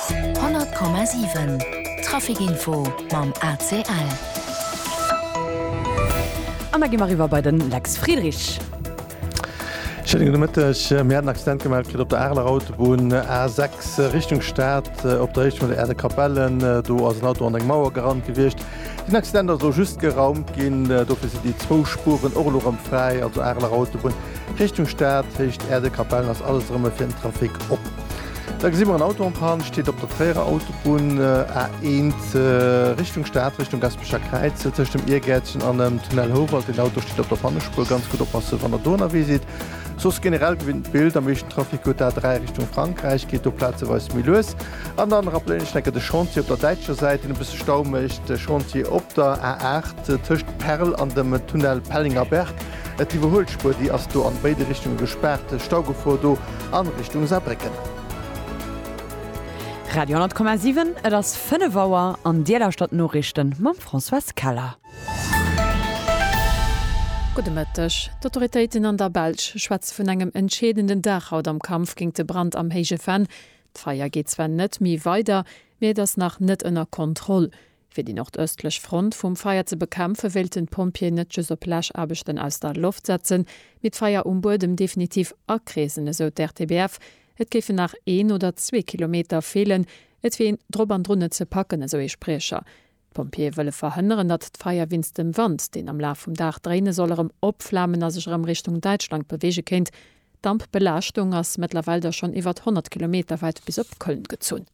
100,7 Traficinfo mam ACL. An da gi mer eriwwer bei de Lex Friedrich. Schéine gudde Mëtteg. Mir haten en Accident gemellt kritt op der Areler Autobunn A6 Richtung Stad, op der Héicht vun der Aire de Capellen. Do ass en Auto an eng Mauer gerannt gewiescht. Den Accident ass elo just geraumt ginn. Dofir sinn déi zwou Spuren och elo rëm fräi, also Areler Autobunn Richtung Stad, Héicht Erdekapellen ass alles erëm fir den Trafic op. Da gesi mer en Auto en Panne, steet op der Tréierer Autobunn A1 Richtung Stad, Richtung Gaspecher Kräiz, tëscht dem Iergäertchen an dem Tunnel Houwald. Den Auto steet op der Pannespur, ganz gutt oppassen, wann der do ënnerwee sidd. Soss generell gewinnt d'Bild, am meeschten Trafic huet d'A3 Richtung Frankräich, geet do plazeweis méi lues. An dann rappelen ech enke de Chantier op der däitscher Säit, deen e bësse Stau mécht, de Chantier op der A8 tëscht Perl an dem Tunnel Pellengerberg. D'Iwwerhuelspuer, déi ass do an béide Richtunge gespaart. Staugefor do an Richtung Saarbrécken. Radio 10,7, et ass 5 Auer an Dir lauschtert d'Noriichten mam Françoise Keller. Gudde Mëtteg. D'Autoritéiten an der Belsch schwätze vun engem entscheedenden Dag haut am Kampf géint de Brand am Héije Venn. D'Feier geet zwar net méi weider, mee et ass nach net ënner Kontroll. Fir déi nordëstlech Front vum Feier ze bekämpfen, wéilten d'Pompjeeë net just op Läschaarbechten aus der Loft setzen, mee d'Feier um Buedem definitiv akreesen, esou d'RTBF. Et géifen nach een oder zwee Kilometer feelen. Et wier een drop an drun, et ze packen, esou ee Spriecher. D'Pompjeeë wëlle verhënneren, datt d'Feier winst dem Wand, deen am Laf vum Dag dréine soll, erëm opflamen a sech erëm Richtung Däitschland beweege kéint. D'Dampbelaaschtung ass mëttlerweil da schonn iwwert 100 Kilometer wäit bis op Köln gezunn.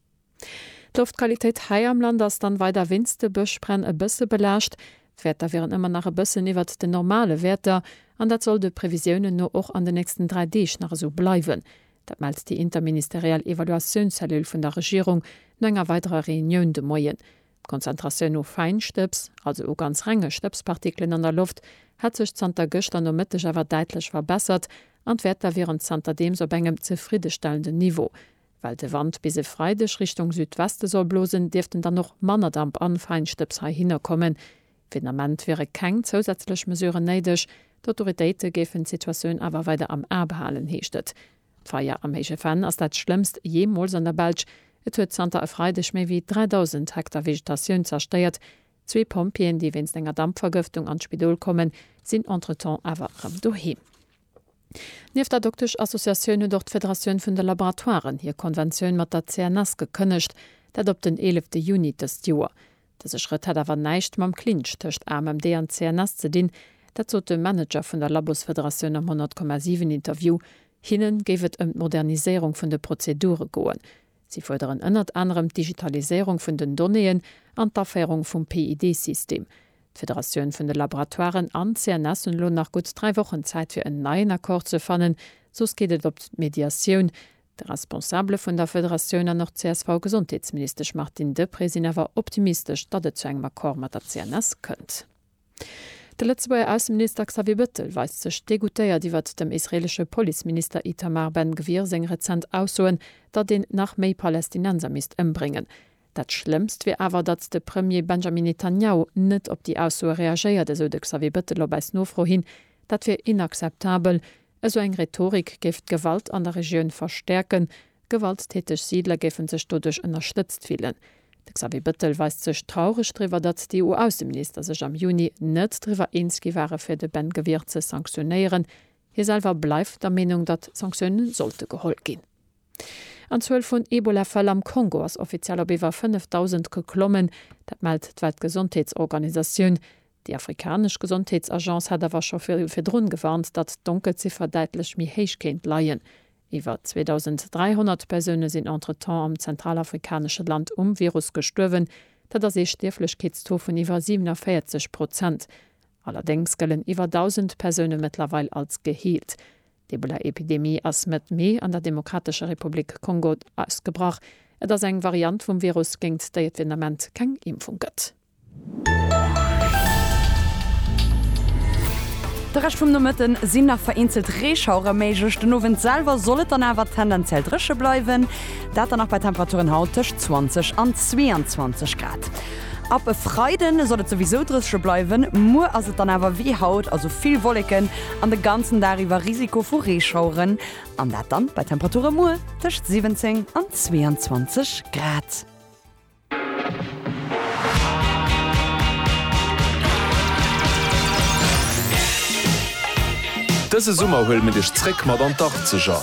D'Loftqualitéit hei am Land ass dann weider winst de Bëschbränn e bësse belaascht. D'Wäerter wieren ëmmer nach e bëssen iwwert den normale Wäerter an dat soll de Previsiounen no och an den nächsten 3 Deeg nach esou bleiwen. Dat mellt déi interministeriell Evaluatiounscellule vun der Regierung no enger weiderer Reunioun de Moien. D'Konzentratioun u Fäinstëbs, also u ganz renge Stëbspartikelen an der Loft, hätt sech zanter gëschter Nomëtteg awer däitlech verbessert an d'Wäerter wieren zanterdeems op engem zefriddestellenden Niveau. Well de Wand bis e Freideg Richtung Südweste soll blosen, dierften dann och manner Damp an Fäinstëbs heihinner kommen. Fir den Ament wiere keng zousätzlech Mesuren néideg. D'Autoritéite géifen d'Situatioun awer weider am A behalen, heescht et. D'Feier am Héije Venn ass dat schlëmmst jeemools an der Belsch. Et huet zanter e Freideg méi wéi 3.000 Hektar Vegetatioun zerstéiert. Zwee Pompjeeën, déi wéinst enger Dampvergëftung an d'Spidol kommen, sinn entretemps awer erëm doheem. Nieft der Dokteschassociatioun huet och d'Federatioun vun de Laboratoiren hir Konventioun mat der CNS gekënnegt, dat op den eelefte Juni dëst Joer. Dëse Schrëtt hätt awer näischt mam Clinch tëscht AMMD an CNS ze dinn. Dat sot de Manager vun der Labosfederatioun am 100,7 Interview. Hinne géif et ëm d'Moderniséierung vun de Prozedure goen. Si fuerderen ënnert anerem d'Digitaliséierung vun den Donnéeën an d'Aféierung vum PID-System. D'Federatioun vun de Laboratoiren an d'CNS hunn elo nach gutt dräi Wochen Zäit fir en neien Accord ze fannen, soss geet et op d'Mediatioun. De Responsabele vun der Federatioun an och d'CSV-Gesondheetsministesch Martine Deprez sinn awer optimistesch, datt et zu engem Accord mat der CNS kënnt. De Lëtzebuerger Ausseminister Xavier Bettel weist sech degoutéiert iwwert dem israeelesche Policeminister Itamar Ben-Gvir seng rezent Aussoen, datt een nach méi Palästinenser misst ëmbréngen. Dat Schlëmmst wier awer, datt de Premier Benjamin Netanjahu net op déi Aussoe reagéiert, esou de Xavier Bettel op eis Nofro hin. Dat wier inakzeptabel. Esou eng Rhetorik géif d'Gewalt an der Regioun verstäerken. Gewalttäteg Siidler géife sech doduerch ënnerstëtzt fillen. De Xavier Bettel weist sech traureg driwwer, datt déi EU-Ausseminister sech am Juni net driwwer eens gi ware fir de Ben Gvir ze sanktionéieren. Hie selwer bleift der Meenung, datt Sanktioune sollte geholl ginn. An d'Zuel vun Ebola-Fäll am Kongo ass offiziell op iwwer 5.000 geklommen. Dat mellt d'Weltgesondheetsorganisatioun. Déi afrikanesch Gesondheetsagence hat awer scho virdrun gewarnt, datt d'Donkelziffer däitlech méi héich kéint leien. Iwwer 2.300 Persoune sinn entretemps am zentralafrikanesche Land um Virus gestuerwen. Dat ass ee Stierflechkeetstaux vun iwwer 47 Prozent. Allerdéngs gëllen iwwer 1.000 Persoune mëttlerweil als geheelt. D'Ebola-Epidemie ass Mëtt Mee an der Demokratescher Republik Kongo ausgebrach. Et ass eng Variant vum Virus, géint déi et fir den Ament keng Impfung gëtt. De Rescht vum Nomëtte sinn nach vereenzelt Reeschauere méiglech, den Owend selwer soll et dann awer tendenziell dréche bleiwen, dat dann nach bei Temperaturen haut tëscht 20 an 22 Grad. Ab e Freiden soll et souwisou drëssche bleiwen, muer ass et dann awer wéi haut, also vill Wolleken an de ganzen Dag iwwer Risiko vu Reeschaueren, an dat dann bei Temperature muer tëscht 17 an 22 Grad. Dëse Summer huele mir dech zréck mat an d'Arkzeger.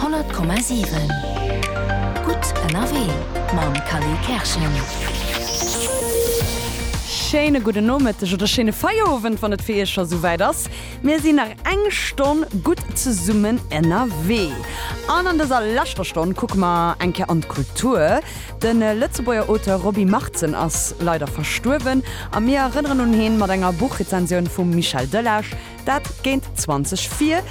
100,7 Gutt ënnerwee mam Kally Kerschen. Schéine gudden Nomëtteg oder schéine Feierowend, wann et fir Iech scho souwäit ass. Mir sinn nach eng Stonn gutt zesummen ënnerwee. An an dëser leschter Stonn kucke mer eng Kéier an d'Kultur. De Lëtzebuerger Auteur Roby Martzen ass leider verstuerwen a mir erënneren un heen mat enger Buchrezensioun vum Michel Delage. Dat géint 20 vir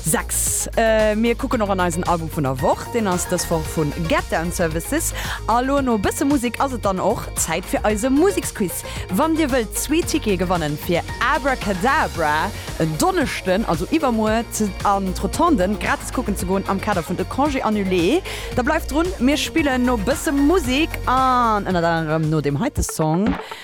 6. Mir kucken och an eisen Album vun der Woch. Deen ass dës Woch vu Get Down Services. A lo no e bësse Musek ass et dann och Zäit fir eise Museksquiz. Wann Dir wëllt zwee Tickete gewanne fir Abracadabra en Donneschden, also iwwermuer, an d'Rotonde gratis kucken ze goen am Kader vun de Congés annulés, da bleift drun. Mir spillen no e bësse Musek an ënnert anerem no deem heite Song.